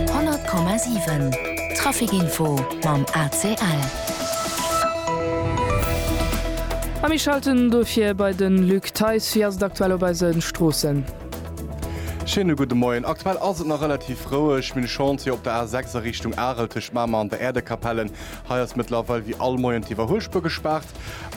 100,7 Trafic Info mam ACL. A mir schalten dofir bei de Luc Theis. Wéi ass et aktuell op eise Stroossen? Schéine gudde Moien. Aktuell ass et nach relativ roueg. Mir hunn Chance fir op der A6 a Richtung Arel tëscht Mamer an der Äerdekapellen. Hei ass mëttlerweil wéi all Moien d'Iwwerhuelspuer gespaart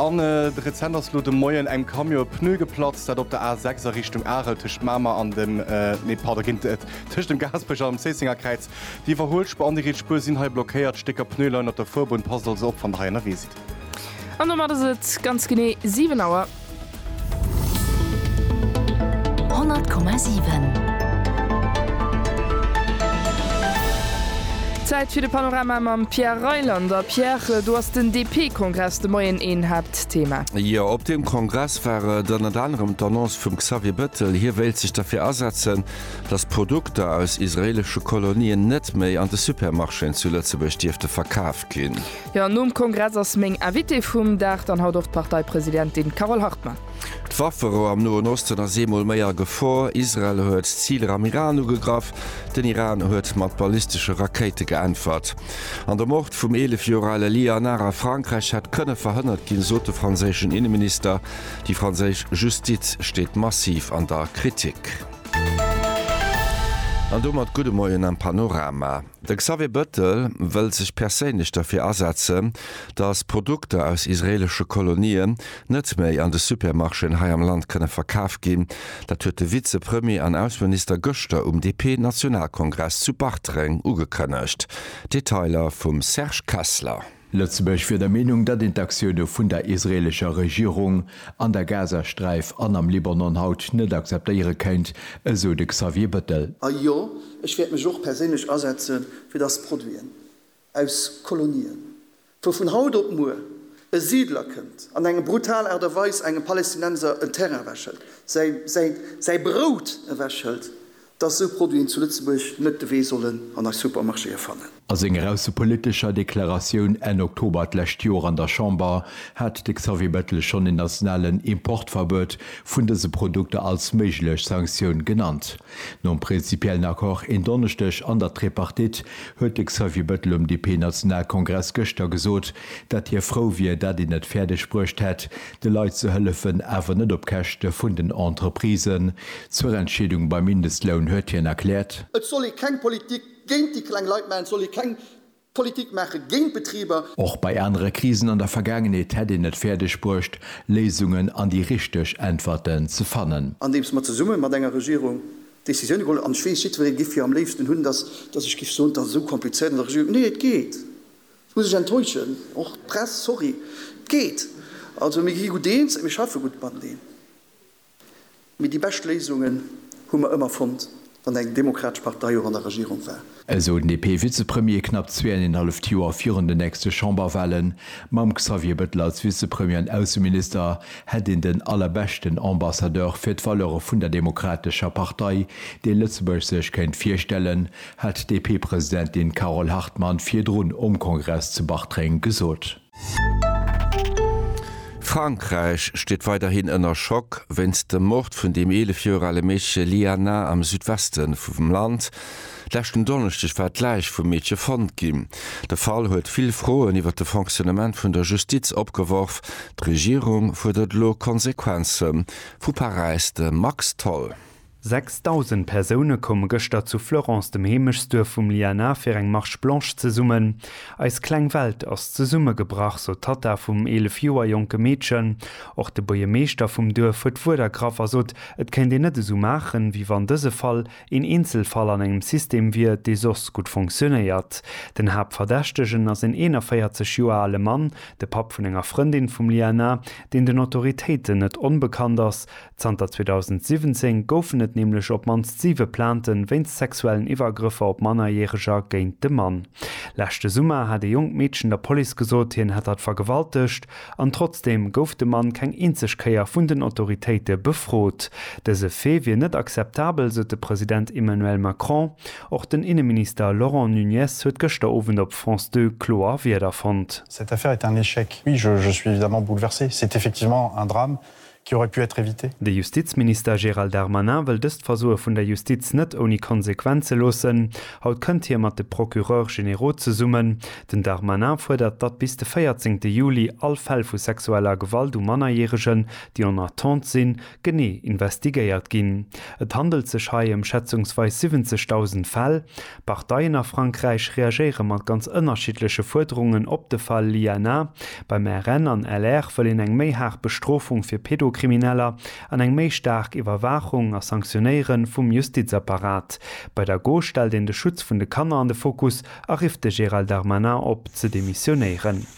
an rezent ass elo de Moien engem Camion e Pneu geplatzt, dat op der A 6 a Richtung Arel tëscht Mamer an dem, nee pardon, ginn et, tëscht dem Gaasperech an dem Zéisséngerkräiz. D'Iwwerhuelspuer an déi riets Spuer sinn hei blockéiert, Stécker Pneu leien op der Fuerbunn, passt also op wann der hei ënnerwee sidd. An domat ass et ganz genee 7 Auer. 100,7. Zäit fir de Panorama mam Pierre Reyland. A Pierre, do ass den DP-Kongress de Moien een Haaptthema. Jo, op deem Kongress war et ënnert anerem d'Annonce vum Xavier Bettel, hie wéilt sech derfir asetzen, datt Produkter aus israeelesche Kolonien net méi an de Supermarchéen zu Lëtzebuerg dierfte verkaaft ginn. Jo, nom Kongress ass meng Invitée vum Dag dann haut och d'Parteipresidentin Carole Hartmann. D'Wafferou am Noen Osten ass eemol méi a Gefor, Israel huet Ziler am Iran ugegraff, den Iran huet mat ballistesche Rakéite geäntwert an de Mord vum 11 Joer ale Lia Hanard a Frankräich hätt kënne verhënnert ginn, sot de franséischen Inneminister. Déi franséisch Justiz steet massiv an der Kritik. An domat gudde Moien am Panorama. De Xavier Bettel wëll sech perséinlech derfir asetzen, datt Produkter aus israeelesche Kolonien net méi an de Supermarchéen hei am Land kënne verkaf ginn. Dat huet de Vizepremier an Ausseminister gëschter um DP-Nationalkongress zu Bartreng ugekënnegt. Detailer vum Serge Kessler. Lëtzebuerg wier der Meenung, datt een d'Aktioune vun der israeelescher Regierung an der Gazasträif an am Libanon haut net akzeptéiere kéint, esou de Xavier Bettel. A jo, ech wäert mech och perséinlech asetze fir datt Produiten aus Kolonien, wou vun haut op muer e Siidler kënnt an eng brutal Aart a Weis engem Palestinenser en Terrain ewechhëlt, säi Brout ewechhëlt, dass esou Produiten zu Lëtzebuerg net de Wee sollen an eis Supermarchéë fannen. A senger aussepolitescher Deklaratioun Enn Oktober d'lescht Joer an der Chamber hat de Xavier Bettel schonn en nationalen Importverbuet vun dëse Produkter als méiglech Sanktioun genannt. Nom prinzipiellen Accord en Donneschdeg an der Tripartite huet de Xavier Bettel um DP-Nationalkongress gëschter gesot, dat hie frou wier, dat een et fäerdeg bruecht hätt, de Leit ze hëllefen, awer net op Käschte vun den Entreprisen. Zur Entscheedung beim Mindestloun huet hien erkläert. Et soll ee keng Politik géint déi kleng Leit maachen, et soll ee keng Politik maache géint d'Betriber. Och bei anere Krisen an der Vergaangenheet hätt een et fäerdeg bruecht, Léisungen an déi richteg Äntwerten ze fannen. Andeems mer zesumme mat enger Regierung Decisioune geholl hunn, an ech weess, jiddweree géif jo am léifsten hunn, datt ech géif soen, et ass esou komplizéiert an der Regierung. Nee, et geet. Muss ech enttäuschen, och d'Press, sorry. Et geet, also mir gi gutt eens, mir schaffe gutt mateneen, mee déi bescht Léisungen hu mer ëmmer fonnt, wann eng demokratesch Partei och an der Regierung war. Esou den DP-Vizepremier knapp zweeënenhalleft Joer virun den nächste Chamberwahlen. Mam Xavier Bettel als Vizepremier an Ausseminister hätt een den allerbeschten Ambassadeur fir d'Valeure vun der demokratescher Partei, dee Lëtzebuerg sech kéint virstellen. hat d'DP-Presidentin Carole Hartmann virdrun um Kongress zu Bartreng gesot. Frankräich steet weiderhin ënner Schock wéinst dem Mord vun dem 11 Joer ale Meedche Liana am Südweste vum Land. Leschten Donneschdeg war d'Läich vum Meedche fonnt ginn. De Fall huet vill Froen iwwer de Fonctionnement vun der Justiz opgeworf. D'Regierung fuerdert elo Konsequenze vu Paräis, de Max Tholl. 6.000 Persoune koume gëschter zu Fleurance, dem Heemechtsduerf vum Liana, fir eng Marche Blanche zesummen. Eis kleng Welt ass zesummegebrach, sot d'Tatta vum 11 Joer jonke Meedchen. Och de Buerjemeeschter vum Duerf huet d'Wuert ergraff a sot, et kéint een net esou maachen, wéi wann dëse Fall een Eenzelfall an engem System wier, dee soss gutt funktionéiert. Den Haaptverdächtegen ass en 41 Joer ale Mann, de Papp vun enger Frëndin vum Liana, deen den Autoritéiten net onbekannt ass. Zanter 2017 goufen et nämlech op d'mannst siwe Plainten wéinst sexuellen Iwwergrëffer op Mannerjäreger géint de Mann. Leschte Summer hat ee jonkt Meedchen der Police gesot, hien hätt hatt vergewaltegt. An trotzdeem gouf de Mann keng eenzeg Kéier vun den Autoritéite befrot. Dëse Fait wier net akzeptabel, sot de President Emmanuel Macron. Och den Inneminister Laurent Nunez huet gëschter Owend op France Deux kloer Wierder fonnt. Cette affaire est un échec. Oui, je suis évidemment bouleversé. C'est effectivement un drame qui aurait pu être évité. De Justizminister Gérald Darmanin wëll dëst Versoe vun der Justiz net ouni Konsequenze loossen. Haut kënnt hie mat de Procureurs généraux zesummen. Den Darmanin fuerdert, datt bis de 14 Juli all Fäll vu sexueller Gewalt u Mannerjäregen, déi en attente sinn, genee investigéiert ginn. Et handelt sech hei ëm schätzungsweis 70.000 Fäll. D'Parteien a Frankräich reagéiere mat ganz ënnerschiddleche Fuerderungen op de Fall Lianna. Beim RN an LR wëll een eng méi haart Bestrofung fir Pedokrimineller an eng méi staark Iwwerwaachung a Sanktionéiere vum Justizapparat. Bei der Gauche stellt een de Schutz vun de Kanner an de Fokus a rifft de Gérald Darmanin op, ze demissionéieren.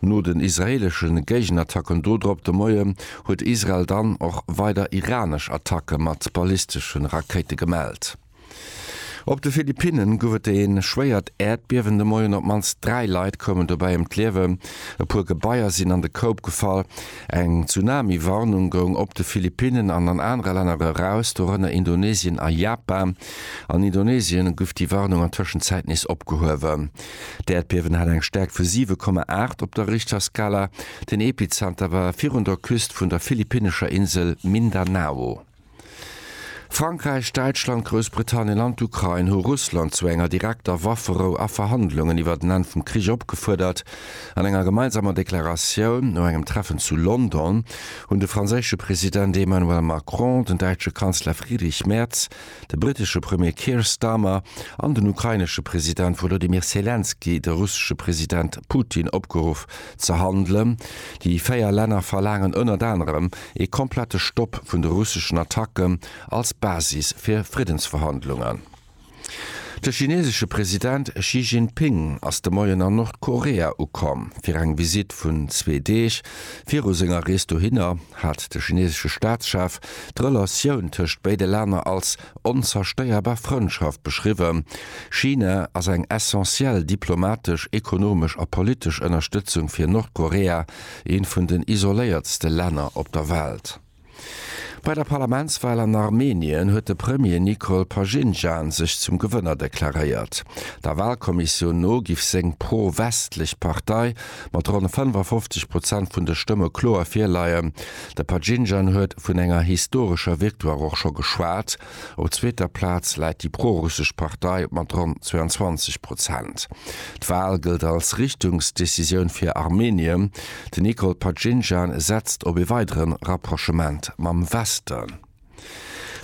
No den israeelesche Géigenattacken dodrop de Moie huet Israel dann och weider iranesch Attacke mat ballistesche Rakéite gemellt. Op de Philippinne gouf et ee schwéiert Äerdbiewen de Moien. Op d'mannst dräi Leit koumen dobäi ëm d'Liewen, e puer Gebaier sinn an de Koup gefall. Eng Tsunami-Warnung goung op de Philippinnen an an anere Länner eraus, dorënner Indonesien a Japan. An Indonesien gouf déi Warnung an Tëschenzäit nees opgehuewen. D'Äerdbiewen hat eng Stäerkt vu 7,8 op der Richterskala. Den Epizenter war virun der Küst vun der philippinnescher Insel Mindanao. Frankräich, Däitschland, Groussbritannien an d'Ukrain hu Russland zu enger direkter Wafferou a Verhandlungen iwwert en Enn vum Krich opgefuerdert. An enger gemeinsamer Deklaratioun no engem Treffen zu London hunn de franséische President Emmanuel Macron, den däitsche Kanzler Friedrich Merz, De brittesche Premier Keir Starmer an den ukrainesche President Wolodymyr Selenskyj de russesche President Putin opgeruff ze handelen. Déi véier Länner verlaangen ënnert anerem ee komplette Stopp vun de russeschen Attacken als Basis fir Friddensverhandlungen. De chinesesche President Xi Jinping ass de Moien an Nordkorea ukomm fir eng Visitt vun zwee Deeg. Viru senger Rees dohinner hat de chinesesche Staatschef D'Relatioun tëscht béide Länner als onzerstéierbar Frëndschaft beschriwwen. China ass eng essentiell diplomatesch, ekonomesch a politesch Ënnerstëtzung fir Nordkorea, eent vun den isoléiertste Länner op der Welt. Bei der Parlamentswal an Armenien huet de Premier Nikol Pashinjan sech zum Gewënner deklaréiert. Der Walkommissioun no giff seng pro-westlech Partei mat ronn 55 Prozent vun de Stëmme kloer virleien. De Pajinjan huet vun enger historescher Victoire och scho geschwat. Op zweeter Plaz läit déi pro-russesch Partei mat ronn 22 Prozent. D'Wal gëllt als Richtungsdecisioun fir Armenien. Den Nikol Pajinjan setzt op ee weidere Rapprochement mam Westen.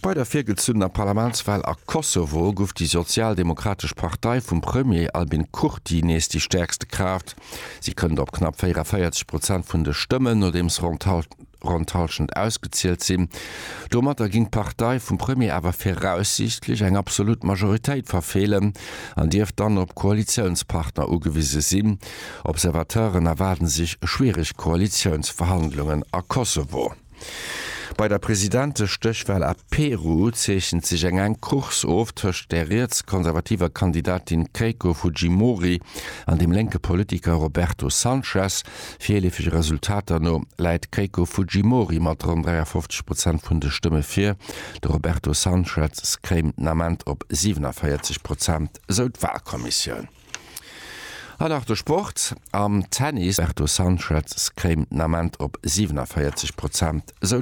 Bei der virgezunnener Parlamentswahl a Kosovo guff déi sozialdemokratesch Partei vum Premier Albin Kurti nees déi stäerkste Kraaft. Si kënnt op knapp 44 Prozent vun de Stëmmen, nodeems ronn d'Halschent ausgezielt sinn. Domatter ginn d'Partei vum Premier awer viraussiichtlech eng absolut Majoritéit verfeelen an dierft dann op Koalitiounspartner ugewise sinn. Observateuren erwaarde sech schwiereg Koalitiounsverhandlungen a Kosovo. Bei der Presidentestéchwal a Peru zeechent sech eng enk Course of tëscht der riets-konservativer Kandidatin Keiko Fujimori an dem lénke Politiker Roberto Sanchez. Virleefege Resultater no läit d'Keiko Fujimori mat ronn 53 Prozent vun de Stëmme vir. De Roberto Sanchez kéim den Ament op 47 Prozent, esou d'Walkommissioun. An nach de Sport, Am Tennis, Berto Sanchez kréim den Ament op 47 Prozent, esou